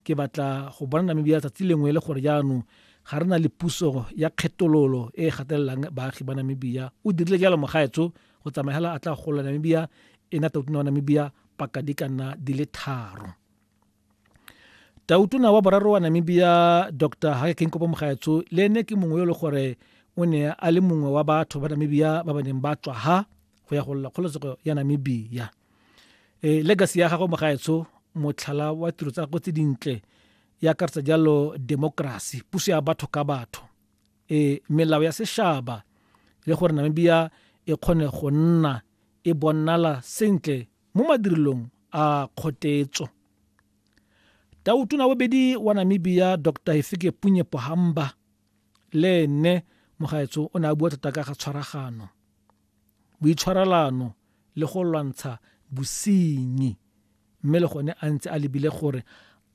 Ke batla go bona Namibia tsatsi lengwe e le gore jaanong ga re na le puso ya kgetololo e e gatelelang baagi ba Namibia. O dirile jalo mogaetsho go tsamaya hela a tla gola Namibia e na tautona wa Namibia paka di ka nna di le tharo. Tautona wa boraro wa Namibia Dr. Hage Geingob Mogaetsho le ene ke mongwe yo e le gore o ne a le mongwe wa batho ba Namibia ba ba neng ba tswa ha go ya go lla kgololesego ya Namibia. e legacy ya gagwe mogaetsho motlhala wa tiro tsa gagwe tse dintle ya akaretsa jalo democracy puso ya batho ka batho e melao ya sešaba le gore namibia e kgone go nna e bonnala sentle mo madirelong a kgotetso tautona bobedi wa namibia dr hefike punye pohamba le ene mogaetso o ne a bua thata ka ga tshwaragano boitshwarelano le go lwantsha bosenyi mme le gone a ntse a lebile gore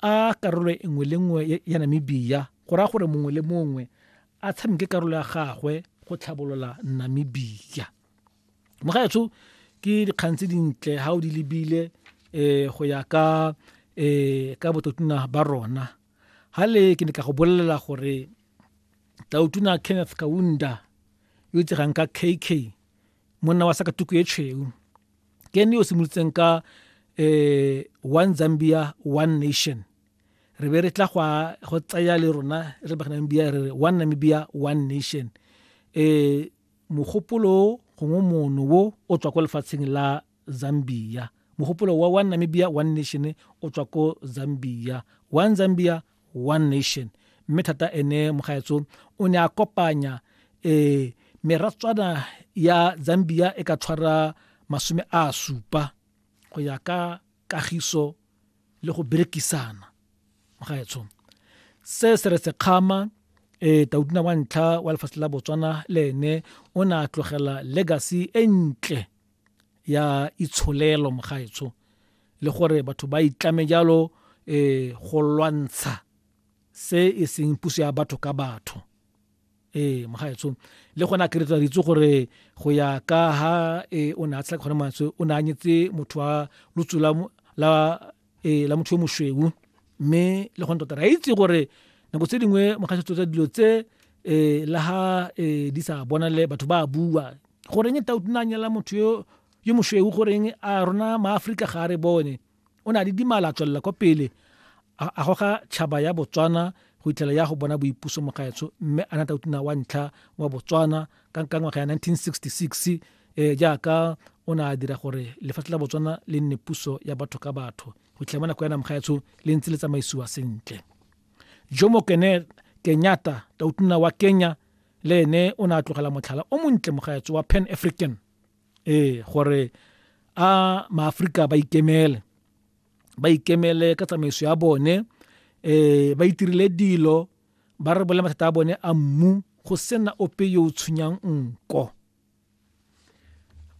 a karolo e nngwe le nngwe ya Namibia go raya gore mongwe le mongwe a tshameke karolo ya gagwe go tlhabolola Namibia mo gaetsho ke dikgang tse dintle ga o di lebile um go ya ka um ka bototuna ba rona ga le ke ne ka go bolelela gore tautuna kenneth kaunda yo itsegang ka kk monna wa sa ka tuku e tshweu ke ene yo simolotseng ka um one zambia one nation re be re tla go tsaya le rona re bagana namibia re re one namibia one nation um mogopolo gongwe mono wo o tswa ko lefatsheng la zambia mogopolo wa one namibia one nation o tswa ko zambia one zambia one nation mme thata ene mogaetso o ne a kopanya um meratswana ya zambia e ka tshwara masome a supa go ya ka kagiso le go berekisana mogaetsho se se re sekgama um e, taudina wa ntlha wa lefatshe la botswana le ene o ne a tlogela legacy e ntle ya itsholelo mogaetsho le gore batho ba itlame jalo eh go lwantsha se e seng puso ya batho ka batho eh mogaetsho le gone a keretsa ditse gore go ya ka ha e o ne a tshela gone mantswe o ne a nyetse motho wa lotsula la ee la motho yo mosweu mme le gone tota re a itse gore nako tse dingwe mogasetso tsa dilo tse um le ga um di sa bonale batho ba bua goreng tau nna nyala motho yo yo mosweu goreng a rona maaforika ga a re bone o ne a le dimala a tswelela kwa pele a goga tšhaba ya botswana go itlhela ya go bona boipuso mogaetsho mme a na tau wa ntlha wa botswana ka ngwaga ya 1966 e jaaka o ne a dira gore lefatshe la botswana le nne puso ya batho ka batho go fitlhela mo nako ya namgaetsho le ntse le tsamaisiwa sentle jomo kene kenyata tautuna wa kenya le ene o ne a tlogela motlhala o montle mogaetso wa pan african ee gore a maaforika ba ikemele ba ikemele ka tsamaiso ya bone eh ba itirile dilo ba re bole mathata a bone a mmu go sena ope yo o tshwenyang nko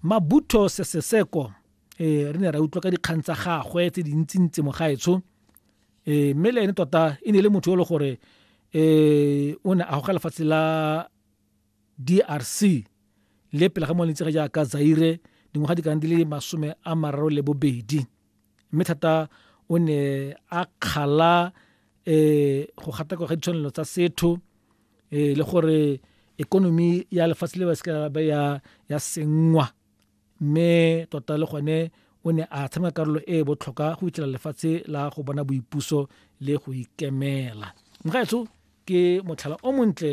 mabutho seseseko um re ne ra utlwa ka dikgang tsa gagwe tse dintsintsi mogaetsho um eh, mme le ene tota e ne le motho yo le gore um o ne a goga lefatshe la d r c le pele ga mo lentse ga jaaka zaire dingwaga di kana di le masome a mararo le bobedi mme thata o ne a kgala um go gatakwa ga ditshwanelo tsa setho um le gore ekonomi ya lefatshe le ba seka ba ya ya senngwa mme tota le gone o ne a tshameka karolo e e botlhokwa go fitlhela lefatshe la go bona boipuso le go ikemela mogaetso ke motlhala o montle